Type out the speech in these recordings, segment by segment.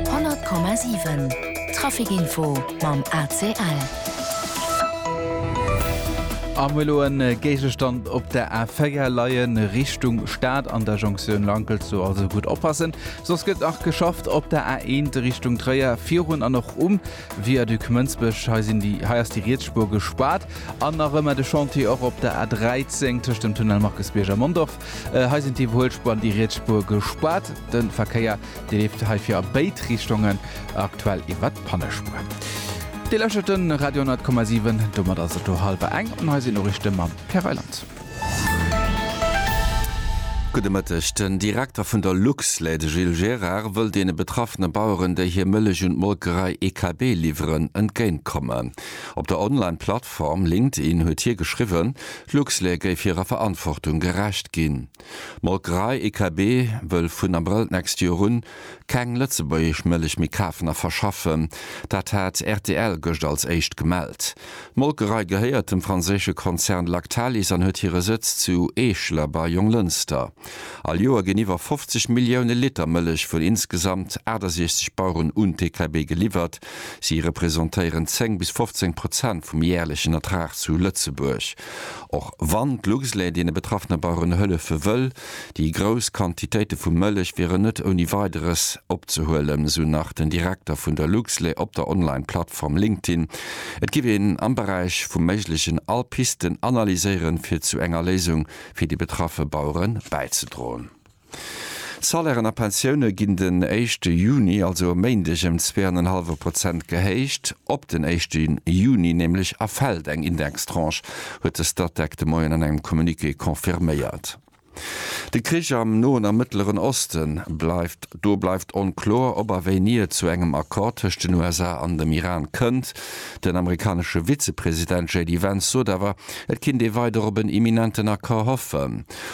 100,7 Trafic Info mam ACL. Am elo en Géigestand op der A4 leien Richtung Stad an der Jonktioun Lankelt, sou also gutt oppassen. Soss gëtt nach geschafft op der A1 Richtung Tréier virun an och um Viaduc Mënsbech. Hei sinn déi hei ass déi Rietsspuer gespaart an nach ëmmer de Chantier och op der A13 tëscht dem Tunnel Markusbierg a Mondorf. Hei sinn d'Iwwerhuelspuer an déi riets Spuer gespaart. De Verkéier, dee leeft heifir a béid Richtungen, aktuell iwwer d'Pannespuer. Dir lauschtert de Radio 100,7. Domat ass et do hallwer eng an hei sinn d'Noriichte mam Pierre Reyland. Gudde Mëtteg. Den Direkter vun der Luxlait, de Gilles Gérard, wëll deene betraffene Baueren, déi hir Mëllech un d'Molkerei EKB liwweren, entgéintkommen. Op der Online-Plattform LinkedIn huet hie geschriwwen, D'Luxlait géif hirer Verantwortung gerecht ginn. D'Molkerei EKB wëll vun Abrëll d'nächst Joer un keng lëtzebuergesch Mëllech méi kafen a verschaffen. Dat hat rtl gëscht als éischt gemellt. D'Molkerei gehéiert dem franséische Konzern Lactalis an huet hire Sëtz zu Eeschler bei Jonglënster. All Joer ginn iwwer 50 Millioune Liter Mëllech vun insgesamt 68 Baueren un d'EKB geliwwert. Si representéieren 10 bis 15 Prozent vum jäerlechen Ertrag zu Lëtzebuerg. Och wann d'Luxlait deene betraffene Baueren hëllefe wëll, déi grouss Quantitéite vu Mëllech wieren net ouni Weideres opzehuelen, esou nach den Direkter vun der Luxlait op der Online-Plattform LinkedIn. Et géif een am Beräich vum Méiglechen all Pisten analyséieren, fir zu enger Léisung fir déi betraffe Bauere bäizedroen. Salairen a Pensioune ginn den éischte Juni, also e Méindeg, ëm zwee an en hallwe Prozent gehéicht. Op den éischte Juni nämlech erfält eng Indextranche, huet de Statec de Moien an engem Communiqué confirméiert. De Krich am Noen a Mëttleren Oste bleift. Do bleift onkloer, ob a wéini et zu engem Accord tëscht den USA an dem Iran kënnt. Den amerikanesche Vizepresident JD Vance sot awer, et kinnt ee weider op en imminenten Accord hoffen.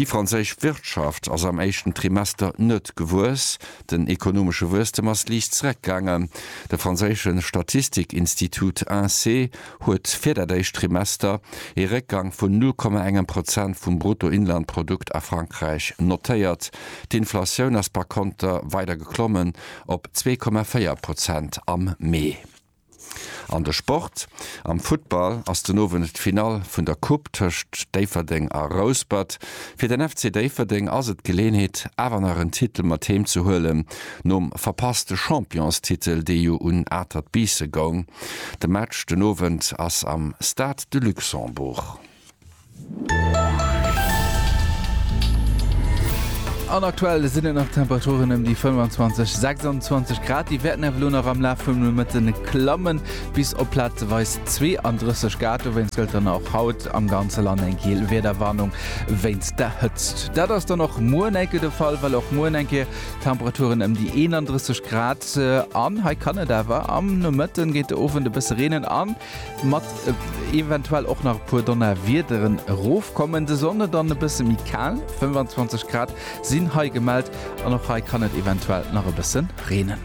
Déi franséisch Wirtschaft ass am éischten Trimester net gewuess. Den ekonomesche Wuesstem ass liicht zereckgaangen. De franséische Statistikinstitut INSEE huet fir dat éischt Trimester ee Réckgang vun 0,1 Prozent vum Bruttoinlandprodukt a Frankräich notéiert. D'Inflatioun ass par konter weider geklommen op 2,4 Prozent am Mee. An de Sport, Am Futtball ass den Owend d'Finall vun der Coupe tëscht Déifferdeng a Rouspert. Fir den FC Déifferdeng ass et d'Geleeënheet awer nach en Titel mat heem ze huelen, nom verpasste Championstitel, dee jo un Atert Biisse goung. De Match den Owend ass am Stade de Luxembourg. An aktuell sinn et nach Temperaturen ëm déi 25, 26 Grad. Déi wäerten awer elo nach am Laf vum Nomëtte klammen, bis op plazeweis 32 Grad. Dowéinst gëllt dann och haut am ganze Land eng giel Wiederwarnung wéinst der Hëtzt. Dat ass dann och muer enke de Fall, well och muer eng Kéier Temperaturen ëm déi 31 Grad. An hei kann et awer am Nomëtten géint de Owend e bësse reenen an Mat eventuell och nach e puer Donnerwiederen erofkommen. De Sonde dann e bësse méi kal, 25 Grad sinn hei gemellt an och hei kann et eventuell nach e bësse reenen.